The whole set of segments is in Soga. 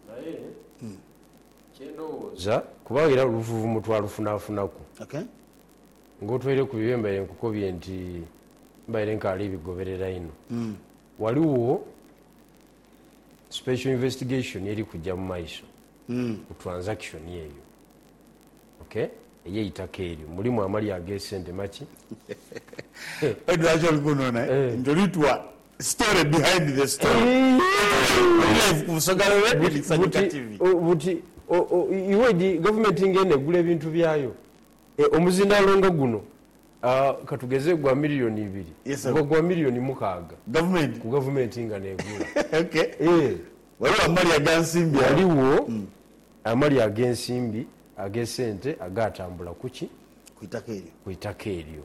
Naye kye ndowooza, kubanga era oluvuvumo twalufunafunaku, ng'otweire ku bibyo bye mbaire nkukobye nti mbaire nkaali bigoberera inho, ghaligho special investigation eri kuja mu maiso ku transaction eyo, okay, ey'eitaka eryo. Mulimu amalya ag'esente maki? Hee! Aye lwaki oli kunona nti oli twa Story behind the story Eeh! Live ku Busoga Road Radio ni Sanyuka TV. Buti iwe di gavumenti nga eno egula ebintu byayo? Omuzindaalo nga guno katugeze gwa miriyoni ibiri guba gwa miriyoni mukaaga ku gavumenti nga n'egula. Ghaligho amali ag'ensimbi agho? Ghaligho amali ag'ensimbi ag'esente agaatambula ku ki? Ku itaka eryo.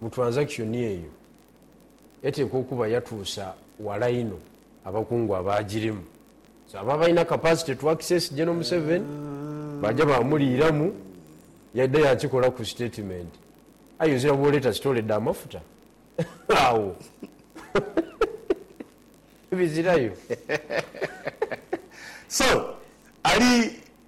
Mu transaction eyo eteekwa okuba yatuusa wala inho abakungu abaagirimu. So abo abalina capacity to access General Museveni baaja baamuliiramu, yaidha yaakikolaku statement. Aye ozira bw'oleeta sitoole dha mafuta agho bizirayo. So ali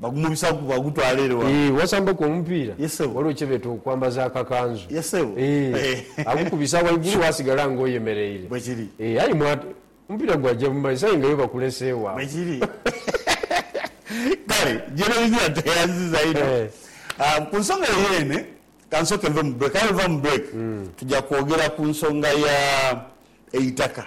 Bagumubisaku bagutwala ere wa. Eeh wasamba ku omupiira Yes sebo. waliwo kyebeeta okwambaza akakanzu Yes sebo. eeh Eeh. agukubisa waigulu wasigala nga oyemereire Bwekiri. eeh aye mwat omupiira gwaja mumaiso aye nga yo bakuleseewo awo. Bwekiri. Kale Gereziya tweyanziza inho. Eeh. Aah ku nsonga eyo yeene kansooke nve mu break aye bweva mu break tuja kwogera ku nsonga ya eitaka